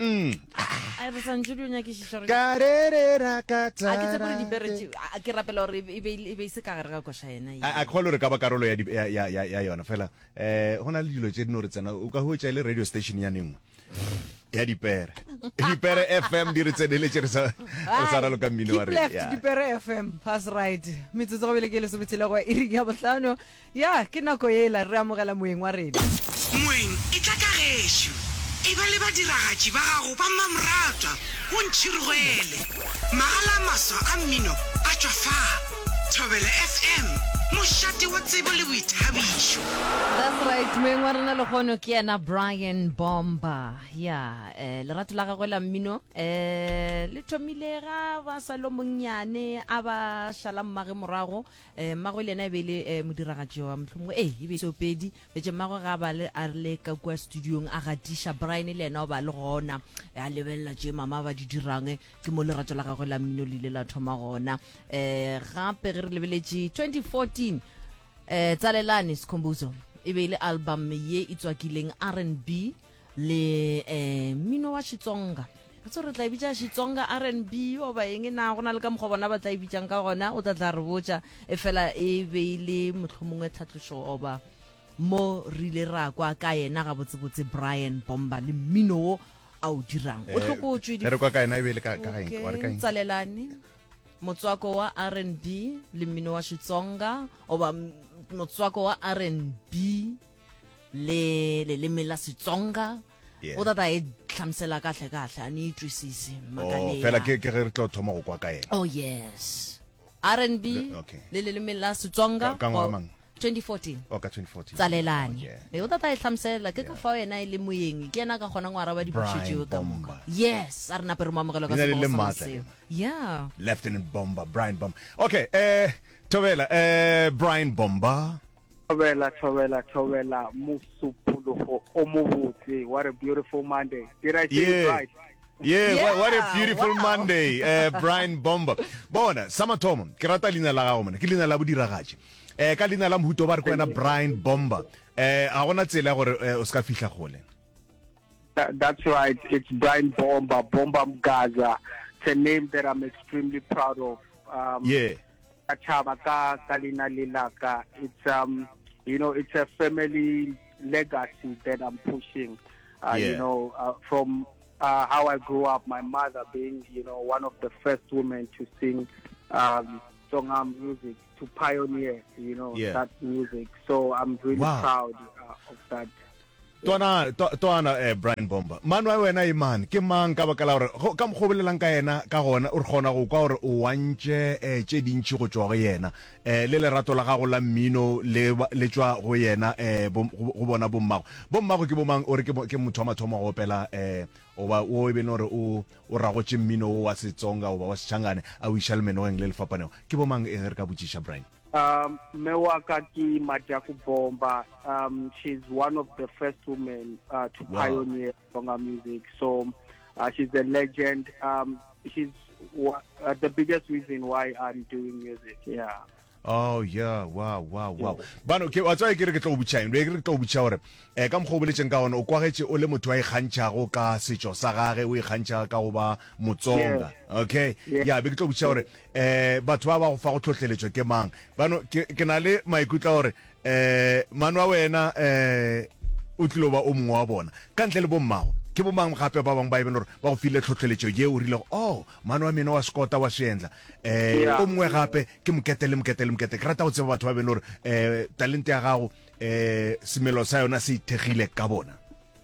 Mm. a re santse di o nyakešiša gore Ka re re ra ka a ke tsebe gore tsara dipere te- tše- a ke rapela gore e be- e be e be e se ka gare ga koša yena ye. a a kgole gore ka ba karolo ya, di- ya, ya, ya, ya yona fela um go na le dilo tše dino re tsena o ka hwetša e le radio station ya nengwe ya dipere dipere fm di re tseneletše re sa re sa raloka mmino wa Keep rena left, Yeah. dipere fm pass right metsotso go bele ke lesometshela go iri ya bohlano Ya, ke nako yela re amogela Moeng wa rena. Moeng, etla ka gešo. Eba le badiragatši ba gago ba mmamoratwa, o ntšhirogele. Magala a maswa a mmino a tšwa fa. Thobela FM, mošate wa tsebo le boithabišo. That's right, Moeng wa rena lehono ke yena Brian Bomba. Ya, eh, lerato la gagwe la mmino eh le thomile ga ba sa lo monnyane a ba šala mmage morago E, mmagwe le yena e be e le e, modiragatši wa mohlomongwe ee e be seo pedi betse mmagwe ga ba le a le ka kua studiong a gatiša brian le yena o ba le gona e, a lebelela tše mama ba di dirang e, ke mo lerato la gagwe la mmino le ile la thoma gona um gape ge re lebeletše 2014 um tsalelane sekhombuzo e be e le album ye e tswakileng r and b le um mmino wa xitsonga ga tse re tla e bitša xitsonga r n b o ba eng na go na le ka mokgwa bona ba tla e bitšang ka gona o tla tla re botša e fela e be e le mohlomongwe tlhatlošo oba mo re ile ra kwa ka yena gabotsebotse brian bomba le mmino wo a o dirang o tlhokotswe di- Eh, re kwa ka yena e be e le ka ka eng wa re ka Okay, eng tsalelane motswako wa r n b le mmino wa xitsonga oba m- motswako wa r n b le leleme la setsonga o tata e tlhamsela kahle kahle a ne itwisise oh, fela ke ge re tlo thoma go kwa ka ena oh yes r n b le leleme la setsonga 2014 oh, tsalelane e o tata e tlhamselela ke ka fao ena e le moyeng ke ena ka kgonang go araba dipuso tseo ka moka yes a re nape re mo amogela ka seo yeah lieutenant bomber brian bomber okay eh thobela eh brian bomber Thobela, thobela, thobela Mosupologo o mobotse. What a beautiful Monday. Did I say it right? Yeah, yeah, what a beautiful wow. Monday, uh, Brian Bomber. Bona, sa mathomo, ke rata leina la gago mona, ke leina la bodiragatši. Eh ka leina la mohuto ba re kwena Brian Bomber. Eh a gona tsela gore eh, o ska fihla gole. That's right. It's Brian Bomber, Bomber Mgaza. It's a name that I'm extremely proud of. Um, yeah. Ka tšhaba ka ka lena le laka it's um you know it's a family legacy that I'm pushing uh, yeah. you know uh, from uh, how I grew up my mother being you know one of the first women to sing um Tsonga music to pioneer you know yeah. that music so I'm really wow. proud uh, of that Twana, twa, twana, eh, Brian Bomber, mano a wena e man, ke mang ka baka la gore, go, ka mokgwa o bolelang ka yena, ka gona, o re kgona go kwa gore o wantše eh, tše dintši go tšwa go yena, eh, le lerato la gago la mmino le, le tšwa go yena, eh, bo, go, go bona bommago. Bommago ke bomang? O re ke, ke motho wa mathomo go opela, eh, goba wo e bene gore o, o ragotše mmino wo wa Setsonga goba wa Sechangane, a o iša lemenogeng le le fapanego. Ke bomang eng, re ka botšiša, Brian? Um, mme wa ka ke Majaku Bomba. Um, she's one of the first women uh, to wow. pioneer Tonga music. So uh, she's a legend. Um, she's uh, the biggest reason why I'm doing music. Yeah. oh yeah wow wow wow bano ke wa tswa ke re ke tlo butšang re ke tlo butša gore eh ka mokgo boletseng ka one o kwagetse o le motho wa ikgantšhago ka setšo sa gage o ikgantšha ka go ba motsonga okay yeah be ke tlo butša gore um batho ba ba go fago tlhohleletšo ke mang bano ke, ke na le maikutlo a gore um mano a wena um o tlilo ba o mongwe wa bona ka ntle le bommago ke bomang gape ba bangwe ba e bele gore ba go file tlhohleletšo ye o rilego o oh, mano wa meno wa sekota wa seendla um o mongwe gape ke mokete le mokete le mokete ke rata go tseba batho ba bele gore um talente ya gago um semelo sa yona se ithekgile ka bona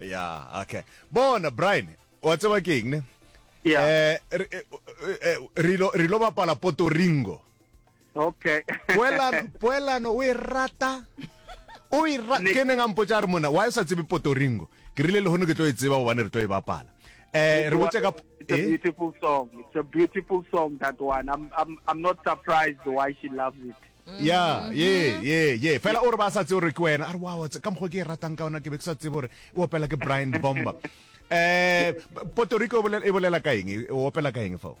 ya okay bona brian wa tseba ke eng ne Yeah. eh re- eh, eh, re lo- re lo bapala poto ringo okay poelano poelano o e rata o e ra- Ne- ke neng a mpotsa a re mona wa e sa tsebe poto ringo ke rile le gone ke tlo e tseba gobane re tlo e bapala eh re botse ka It's a eh? beautiful song. It's a beautiful song that one. I'm I'm I'm not surprised why she loves it. ya ye ye ye fela o re ba sa tse gore ke wena a re wow ka mokgwa ke e ratang ka ona ke be ke sa tsebe gore e opela ke brian bomba um puerto rico e bolela ka eng e opela ka eng fao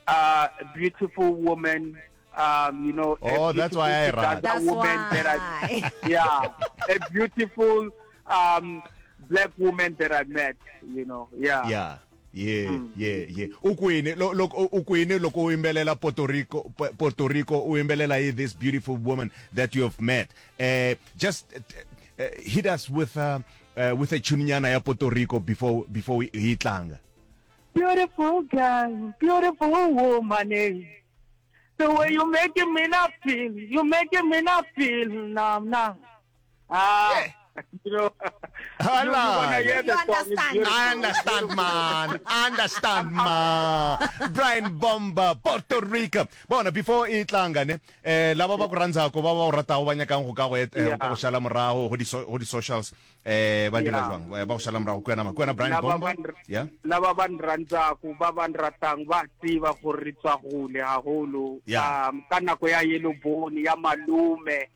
a beautiful woman um, you know, oh, that's why I run. That's woman why. That I, yeah, a beautiful um, black woman that I met, you know, yeah. Yeah. ye ye ye u kwini lo- loko u- u kwini loko u yimbelela puerto rico Pu- puerto rico u yimbelela hi this beautiful woman that you have met uh, just uh, hit us with a, uh, with a tunenyana ya puerto rico before before hi hi tlanga Beautiful girl, beautiful woman. eh. The way you making me not feel, you making me not feel now, now. Ah, you know, Hello. You, you, you understand. I understand, man. I understand, man. Brian Bomba, Puerto Rico. Bona, before e tlanga, ne, eh, laba ba kurantsa ko ba ba rata ho banya kang go ka go et, eh, go shala morago go di so, go di socials. Eh, ba dira jwang? Eh, ba go shala morago kwena ma. Kwena Brian Bomba. Yeah. Laba ba nrantsa go ba ba nratang ba tseba go re tswa gole haholo. Yeah. Um, ka nako ya yellow bone ya malume.